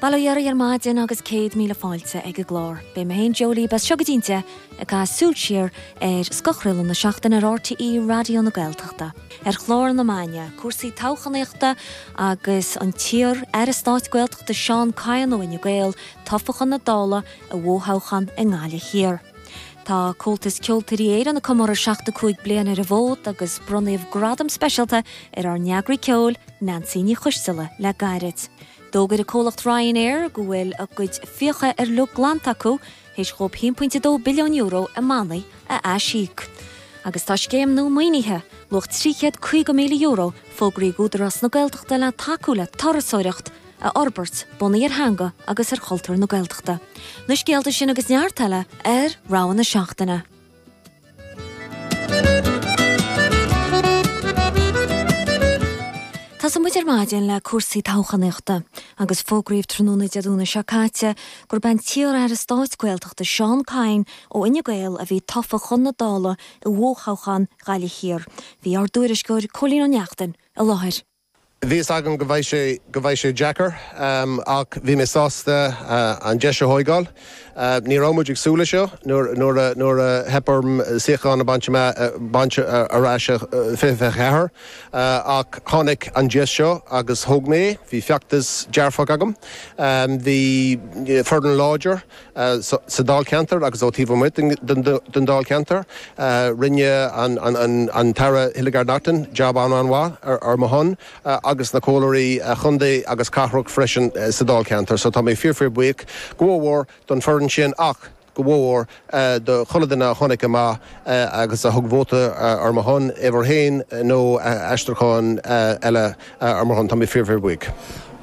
Bail ó Dhia oraibh ar maidin agus céad míle fáilte ag an gclár. Beidh mé féin, Jó, libh, as seo go dtí an deich ag caith súil siar ar scothchraoladh na seachtaine ar RTÉ Raidió na Gaeltachta. Ar chlár na maidine, cúrsaí toghchánaíochta agus an t-iar Aire Stáit Gaeltachta Seán Kyne ó Fhine Gael tofa chun na Dála i bhfothoghchán i nGaillimh Thiar. Tá Comhaltas Ceoltóirí Éireann ag comóradh 75 bliain ar an bhfód agus bronnadh gradam speisialta ar ár n-eagraí ceoil, Neansaí Ní Choisteala le gairid. D'fhógair an comhlacht Ryanair go bhfuil a gcuid fiacha uilig glanta acu théis dhóib €1.2 billiún i mbannaí a aisíoc. Agus tá scéim nua maoinithe, luach €350,000, fógraithe ag Údarás na Gaeltachta le tacú le turasóireacht a fhorbairt bunaithe ar theanga agus ar chultúr na Gaeltachta. Na scéalta sin agus neart eile ar rogha na seachtaine. Tosóidh muid ar maidin le cúrsaí toghchánaíochta agus fógraíodh tráthnóna Dé Domhnaigh seo caite gurb é an t-iar-aire stáit Gaeltachta Seán Kyne ó Fhine Gael a bhí tofa chun na Dála i bhfothoghchán Ghaillimh Thiar. Bhí ár dtuairisceoir Cóilín Ó Neachtain i láthair. Bhí a fhios agam go bheadh sé go bheadh sé deacair, ach bhí mé sásta an deis a thóigeáil. Ní raibh muid ag súil le seo nuair nuair a nuair a theip orm suíochán a bhaint amach baint ar ais 2024, ach tháinig an deis seo agus thóg mé é. Bhí feachtas dearfach agam. Bhí foireann láidir sa Dáilcheantar agus ó taobh amuigh den Dáilcheantar. Rinne an tAire Hildegarde Naughton jab an-an-mhaith ar mo shon agus na Comhairleoirí Chontae agus Cathrach freisin sa Dáilcheantar so tá mé fíor-fíor buíoch, go mhór-mhór don foireann sin ach go mhór-mhór do chuile dhuine a tháinig amach agus a thug vóta ar mo shon, uimhir 1 nó aistriúchán eile ar mo shon. Tá mé fíor-fíor buíoch.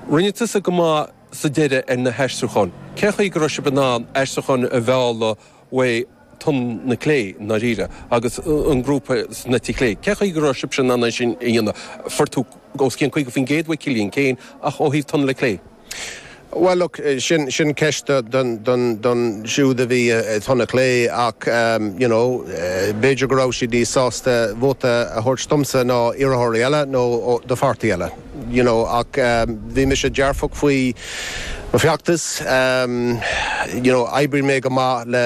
Rinne tusa go maith. sa deireadh ar na haistriúcháin. Cén chaoi go raibh sibh in ann aistriúcháin a mhealladh uaidh Tonn na Clé, i ndáiríre, agus an grúpa san eite chlé? Cén chaoi go raibh sibhse in ann é sin a dhéanamh? Fuair tú os cionn 50% uaidh Cillian, Cén, ach ó thaobh Tonn na Clé? Bhuel, look, sin, sin ceist don, don, don siúd a bhí i dTonn na Clé, ach you know, b'fhéidir go raibh siad níos sásta vóta a thabhairt domsa ná iarrthóirí eile nó do pháirtí eile. you know ach bhí mise dearfach faoi mo feachtas you know oibrigh mé go maith le